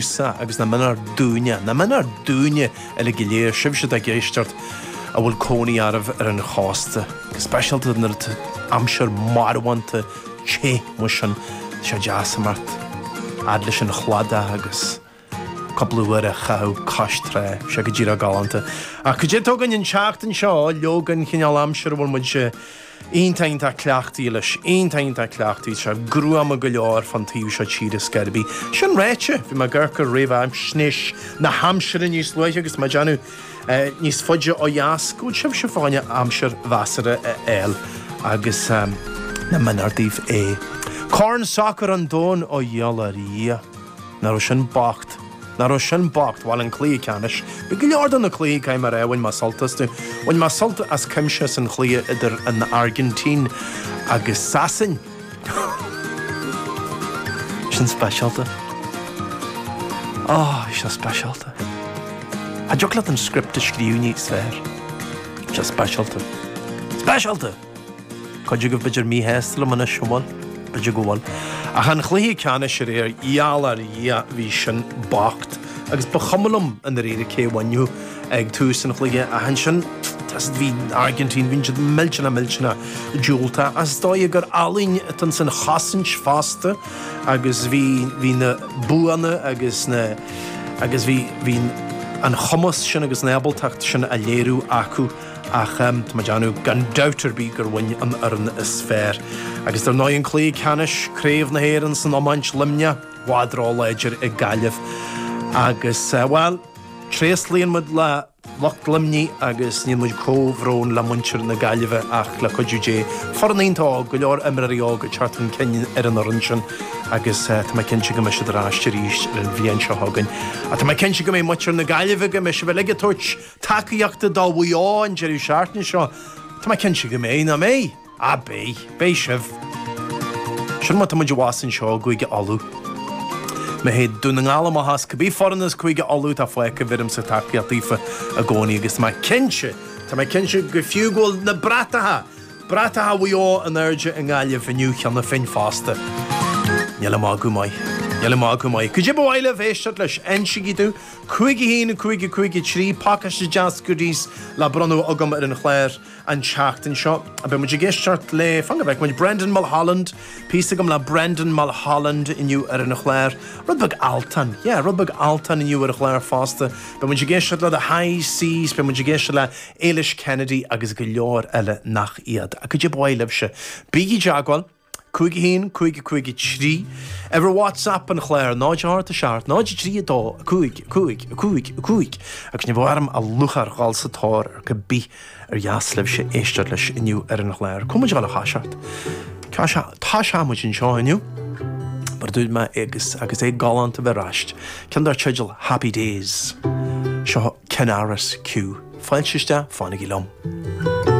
sa agus nach méanar dúinne, nach méanar dúinne uilig go léir, sibhse atá ag éisteacht a bhfuil cónaí oraibh ar an chósta, go speisialta nuair atá aimsir marbhánta te mar sin, tá sé deas imeacht fhad leis an chladach agus cúpla uair a chaitheamh cois trá, tá sé go díreach galánta. Ach cad é atá againn an tseachtain seo leoga an chineál aimsire a bhfuil muid Iontach, iontach cleachtaithe leis. Iontach, iontach cleachtaithe leis. Tá gruama go leor fán taobh seo tíre ar scor ar bith. Sin ráite, bhí mé ag amharc ar réamhaisnéis na haimsire níos luaithe agus mé ag déanamh níos faide ó dheas go bhfuil sibhse fá choinne aimsir mheasartha a fháil agus nach méanar daoibh é. Corn Sacair an Domhain ó gheall ar Dhia. Nach raibh sin bocht. Nach raibh sin bocht. Bhuel an cluiche ceannais. Bhí go leor de na cluichí caithfidh mé a rá bhain mé sult astu. Bhain mé sult as cuimse as an chluiche idir an Airgintín agus Sasain. Sin speisialta. Ó, bhí sé speisialta. Cha dtiocfadh leat an script a scríobh níos fearr. Bhí sé speisialta. Speisialta! Cuid agaibh b'fhéidir míshásta liom anois, an bhfuil? B'fhéidir go bhfuil. Ach an chluiche ceannais aréir, gheall ar Dhia, bhí sin bocht. Agus ba chuma liom i ndáiríre cé a bhainfeadh ag tús an chluiche ach ansin, toisc bhí an Airgintín, bhí siad millteanach millteanach diúltach. Ach is dóigh gur ealaín atá insan chosaint fosta agus bhí bhí na buanna agus na agus bhí bhí an chumas sin agus an ábaltacht sin á léiriú acu. ach tá mé ag déanamh gan dabht ar bith gur bhain an fhoireann is fearr agus dar ndóigh an cluiche ceannais, Craobh na hÉireann san iomáint, Luimneach i bhfad ró-láidir ag Gaillimh agus, bhuel, tréaslaíonn muid le lucht Luimnigh agus níonn muid comhbhrón le muintir na Gaillimhe ach le cuidiú Dé, foireann iontach óg, go leor imreoirí óga ag teacht chun cinn ar an fhoireann sin agus tá mé cinnte go mbeidh siad ar ais arís an bhliain seo chugainn. Ach tá mé cinnte go mbeidh muintir na Gaillimhe, go mbeidh sibh uilig ag tabhairt tacaíochta do Mhaigh Eo an deireadh seachtaine seo. Tá mé cinnte go mbeidh, nach mbeidh? Ah, beidh. Beidh sibh. Sin mar atá muid abhus anseo i gCúige Uladh. Má théid Dún na nGall amach is cibé foireann as Cúige Uladh atá fágtha bheirimsa tacaíocht daofa i gcónaí agus tá mé cinnte, tá mé cinnte go fiú go bhfuil na bratacha, bratacha Mhaigh Eo in airde i nGaillimh inniu cheana féin fosta. Níl a magadh maith. Níl a magadh maith. Cad é ba mhaith libh éisteacht leis, insígí domh. 5 1 5 5 3 Pacáiste deas goodies le bronnadh agam ar an chlár an tseachtain seo. Beidh muid ag éisteacht le, fan go bhfeice muid, Brendan Mulholland, píosa agam le Brendan Mulholland inniu ar an chlár. Rud beag Altan, yeah, rud beag Altan inniu ar an chlár fosta. Beidh muid ag éisteacht le The High Seas, beidh muid ag éisteacht le Éilis Kennedy agus go leor eile nach iad. Cad é ba mhaith libhse. Bígí i dteagmháil. 51 553 ar WhatsApp an chláir 08 7 03 2 5 5 5 5 agus beidh orm lúcháir dhul sa tóir ar cibé ar dheas libhse éisteacht leis inniu ar an chláir. Tá muid ag dhul a thoiseacht. Tá tá muid anseo inniu. Mar dúirt mé agus agus é galánta a bheith ar ais. Ceann dar teideal Happy Days. Seo Ken Arris Q. Fáilte isteach, fanaigí liom.